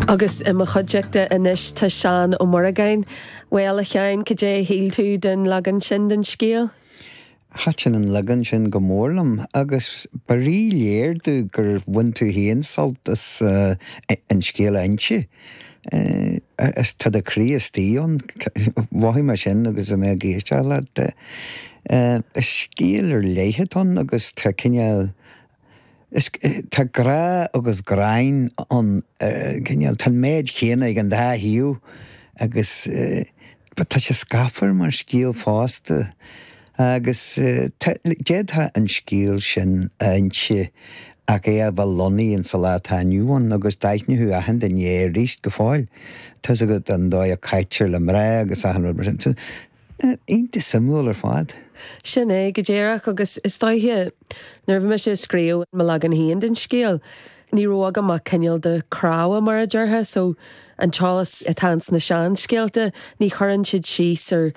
Agus i mo chuideachta anois tá Seán Ó Muireagáin. Bhuel, a Sheáin, cad é a shíl tú den leagan sin den scéal? Thaitin an leagan sin go mór liom, agus ba rí-léir domh gur bhain tú féin sult as an scéal a inse. Is tá do chroí istigh ann, mhothaigh mé sin agus mé ag éisteacht leat. Is scéal ar leith atá ann agus tá cineál. Is tá grá agus gráin ann, cineál, tá an méid chéanna ag an dá thaobh agus tá sé scáfar mar scéal fosta agus d'fhéadfá an scéal sin a inse ach é a bheith lonnaithe in sa lá atá inniu ann agus d'aithneothú achan duine é aríst go fóill, tá a fhios agat, an dóigh a caitear le mná agus achan rud mar sin. Iontach suimiúil ar fad. Sin é, go díreach, agus is dóiche, nuair a bhí mise ag scríobh mo leagan féin den scéal, ní raibh agam ach cineál de cnámha, mar a déarfá, so, an t-eolas atá ins na seanscéalta, ní chuireann siad síos ar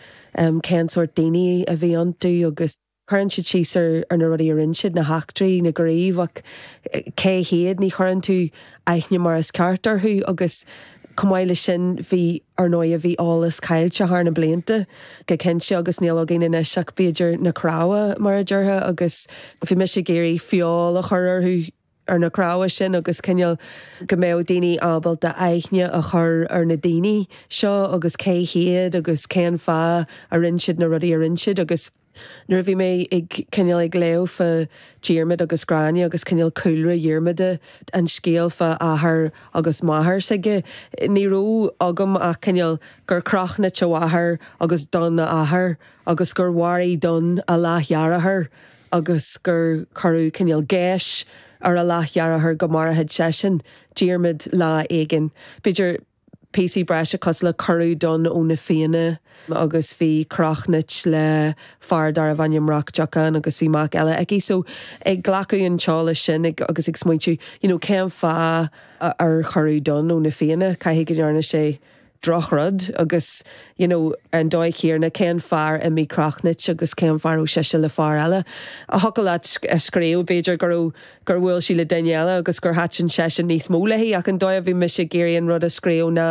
cén sórt daoine a bhí iontu agus. Cuireann siad síos ar na rudaí a rinne siad, na heachtraí, na gníomha, ach cé hiad? Ní chuireann tú aithne mar is ceart orthu agus chomh maith leis sin, bhí, ar ndóighe, bhí eolas caillte thar na blianta, go cinnte, agus níl againn anois ach, b'fhéidir, na cnámha, mar a déarfá, agus bhí mise ag iarraidh feoil a chur orthu. ar na cnámha sin agus cineál go mbeadh daoine ábalta aithne a chur ar na daoine seo agus cé hiad agus cén fáth a rinne siad na rudaí a rinne siad agus nuair a bhí mé ag cineál ag léamh fá Diarmaid agus Gráinne agus cineál cúlra Dhiarmada, an scéal fá athair agus máthair s'aige, ní raibh agam ach cineál gur Crochnait a mháthair agus Donn a athair agus gur mharaigh Donn a leath-dheartháir. agus gur cuireadh cineál geis ar a leath-dheartháir go maródh seisean, Diarmaid, lá éigin. B'fhéidir píosaí breise cosúil le cuireadh Donn ó na Fianna agus bhí Crochnait le fear darbh ainm Roc Diocáin agus bhí mac eile aici. So ag glacadh an t-eolas sin agus ag smaointiú, you know, cén fáth ar cuireadh Donn ó na Fianna? Caithfidh go ndearna sé drochrud agus you know ar an dóigh chéarna cén fáth ar imigh Crochnait agus cén fáth a raibh sise le fear eile a thiocfadh leat a scríobh b'fhéidir go raibh gur bhuail sí le duine eile agus gur thaitin seisean níos mó léi ach an dóigh a bhí mise ag iarraidh an rud a scríobh ná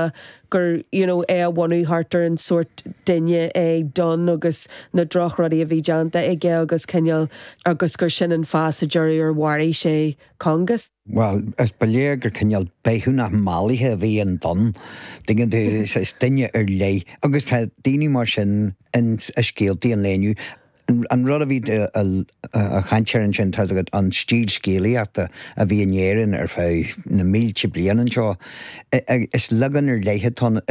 gur you know é a bhunú thart ar an sórt duine é Donn agus na drochrudaí a bhí déanta aige agus cineál agus gur sin an fáth sa deireadh ar mharaigh sé Cóngas? Bhuel, ba léir gur cineál beithiúnach mallaithe a bhí in Dunne, tuigeann tú, is duine ar leith. Agus tá daoine mar sin i scéaltaí an lae inniu. An rud a bhí ag caint air ansin, tá's agat, an stíl scéalaíochta a bhí in Éirinn ar feadh na mílte bliain anseo, is leagan ar leith atá ann,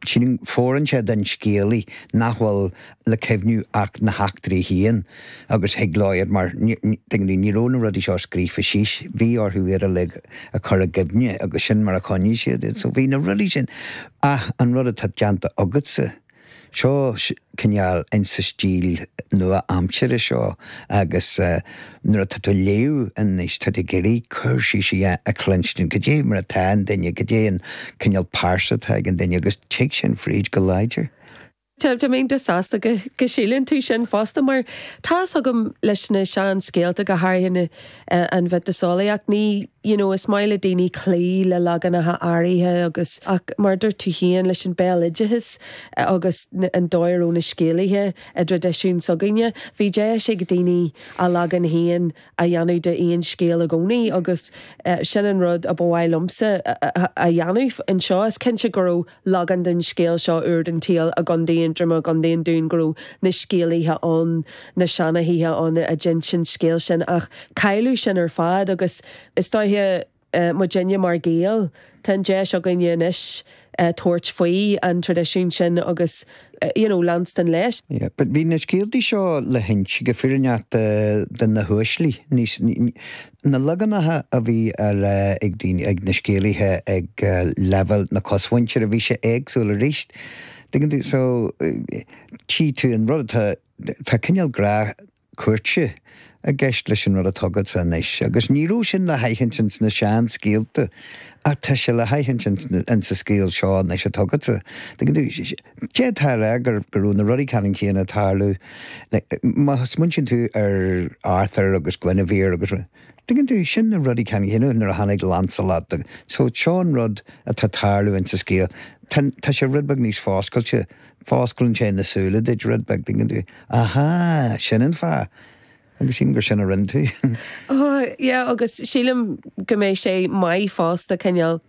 sílim, fóireann sé don scéalaí nach bhfuil le cuimhniú ach na heachtraí féin agus thuig leabhar mar, tuigeann tú, ní raibh na rudaí seo scríofa síos, bhí orthu iad uilig a chur i gcuimhne agus sin mar a choinnigh siad iad. So bhí na rudaí sin. Ach an rud atá déanta agatsa, seo cineál in sa stíl nua-aimseartha seo agus nuair atá tú ag léamh anois tá tú ag iarraidh cur síos a chluinstin, cad é mar atá an duine, cad é an cineál pearsa atá ag an duine agus tig sin fríd go láidir. Tá mé iontach sásta go síleann tú sin fosta, mar tá fhios agam leis na seanscéalta, go háirithe an mhiotaseolaíocht, ní, you know, is maith le daoine cloí le leaganacha áirithe agus, ach mar a dúirt tú féin, leis an béaloideas agus an dóigh a raibh na scéalaithe i dtraidisiún s'againne, bhí deis ag daoine a leagan féin a dhéanamh d'aon scéal i gcónaí agus sin an rud a ba mhaith liomsa a dhéanamh anseo. Is cinnte go raibh. Leagan den scéal seo ar an tsaol i gContae Aontroma, i gContae an Dúin, go raibh na scéalaithe ann, na seanchaithe ann a d'inis an scéal sin, ach cailleadh sin ar fad agus is dóiche, muidne mar Ghaeil, tá an deis againne anois tabhairt faoi an traidisiún sin agus you know leanstan leis. Yeah, but bhí na scéaltaí seo le hinse go fírinneach do na huaislí, Na leaganacha a bhí á rá ag daoine, ag na scéalaithe ag leibhéal na cosmhuintire, bhí sé éagsúil arís. Tuigeann tú, so, tchí tú an rud atá, tá cineál grá cúirte i gceist leis an rud atá agatsa anois agus ní raibh sin le haithint ins na seanscéalta. Ach tá sé le haithint insa scéal seo anois atá agatsa. D'fhéadfá a rá go raibh na rudaí ceannann céanna ag tarlú, má smaointíonn tú ar Arthur agus Guinevere agus rud. Tuigeann tú, sin na rudaí ceannann céanna nuair a tháinig Lancelot. So, seo an rud atá ag tarlú ins sa scéal. Tá sé rud beag níos foscailte, fosclann sé na súile duit rud beag, tuigeann tú. Ahá, sin an fáth. Agus sílim gur sin a rinne tú. Oh yeah agus sílim go mbeidh sé maith fosta cineál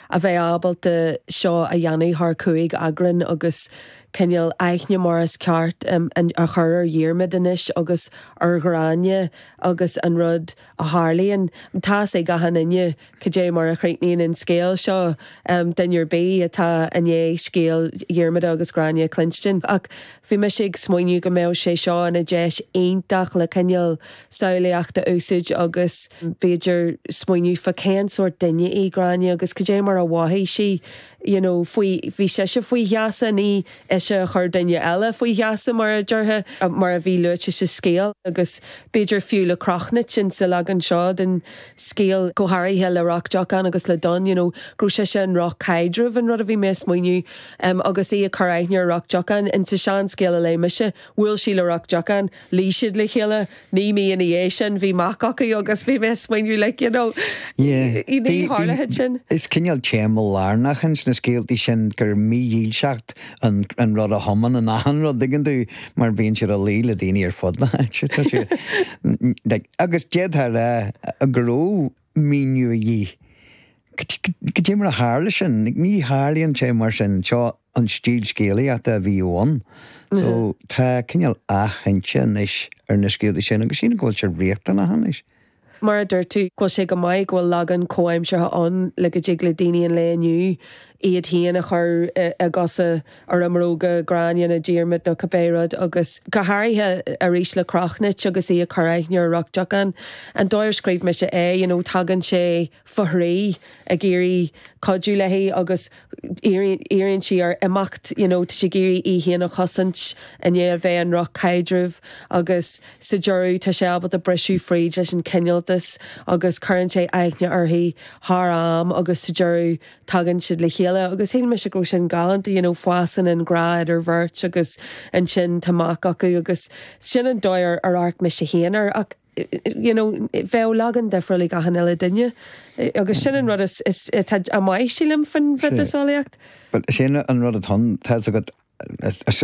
a bheith ábalta seo a dhéanamh thar cúig eagran agus cineál aithne mar is ceart a chur ar Dhiarmaid anois agus ar Ghráinne agus an rud a tharlaíonn, tá's ag achan éinne Cad é mar a chríochnaíonn an scéal seo? Duine ar bith atá i ndiaidh scéal Dhiarmada agus Ghráinne a chluinstin. Ach bhí mise ag smaoineamh go mbeadh sé seo ina deis iontach le cineál samhlaíochta a úsaid agus b'fhéidir smaoineamh fá cén sórt duine í Gráinne agus cad é mar a mhothaigh sí, you know, faoi, bhí sise faoi gheasa, ní. ise a chuir duine eile faoi gheasa, mar a déarfá, mar a bhí luaite sa scéal, agus b'fhéidir fiú le Crochnuit insa leagan seo den scéal, go háirithe le Roc Diocháin agus le Donn, you know, go raibh sise i ndroch-chaidreamh, an rud a bhí mé ag smaoineamh, agus í ag cur aithne ar Roc Diocháin. Insa seanscéal a léigh mise, bhuail sí le Roc Diocháin, luigh siad le chéile, Naoi mí ina dhiaidh sin bhí mac acu agus bhí mé ag smaoineamh like you know ní tharlaíonn sin. Is cineál téama lárnach in sna scéaltaí sin gur mídhílseacht an rud a thiomáineann achan rud, dtuigeann tú, mar bíonn siad ag luí le daoine ar fud na háite. Agus d'fhéadfá a rá go raibh míniú a dhíth Goidé mar a tharla sin, ní tharlaíonn sé mar sin, seo an stíl scéalaíochta a bhíodh ann, so tá cineál athinse anois ar na scéalta sin agus sílim go bhfuil sé riachtanach anois. Mar a dúirt tú, go bhfuil sé go maith go bhfuil leagan comhaimseartha ann le go dtig le daoine an lae inniu iad féin a chur i gcosa, i mbróga Gráinne nó Diarmaid nó cibé rud agus go háirithe arís le Crochnuit agus í ag cur aithne ar Roc Diocháin an dóigh ar scríobh mise é, you know, tagann sé. fá thrí ag iarraidh cuidiú léi agus iarraíonn sí air imeacht you know tá sí ag iarraidh í féin a chosaint i ndiaidh a bheith i ndroch-chaidreamh agus sa deireadh tá sé ábalta briseadh fríd leis an cineáltas agus cuireann sé aithne uirthi thar am agus sa deireadh tagann siad le chéile agus shíl mise go raibh sin galánta you know fásann an grá idir bheirt agus ansin tá mac acu agus sin an dóigh ar amharc mise féin air ach you know bheadh leagan difriúil ag achan uile duine agus sin an rud atá maith sílim fán mhiotaseolaíocht. Bhuel sin an rud atá ann tá a fhios agat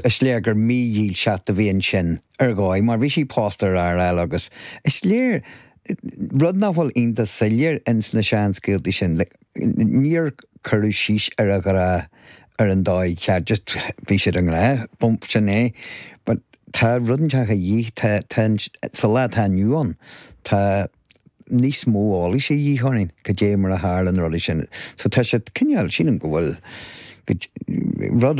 is léir gur mídhílseacht a bhí ansin ar dhóigh mar bhí sí pósta ar fhear eile agus is léir rud nach bhfuil iontach soiléir ins na seanscéaltaí sin like níor cuireadh síos ar an ghrá ar an dóigh cheart, just bhí siad i ngrá, bump, sin é, but tá rud inteach a dhíth, tá, tá, sa lá atá inniu ann, tá níos mó eolais a dhíth orainn, goidé mar a tharla na rudaí sin, so tá sé cineál, sílim go bhfuil, rud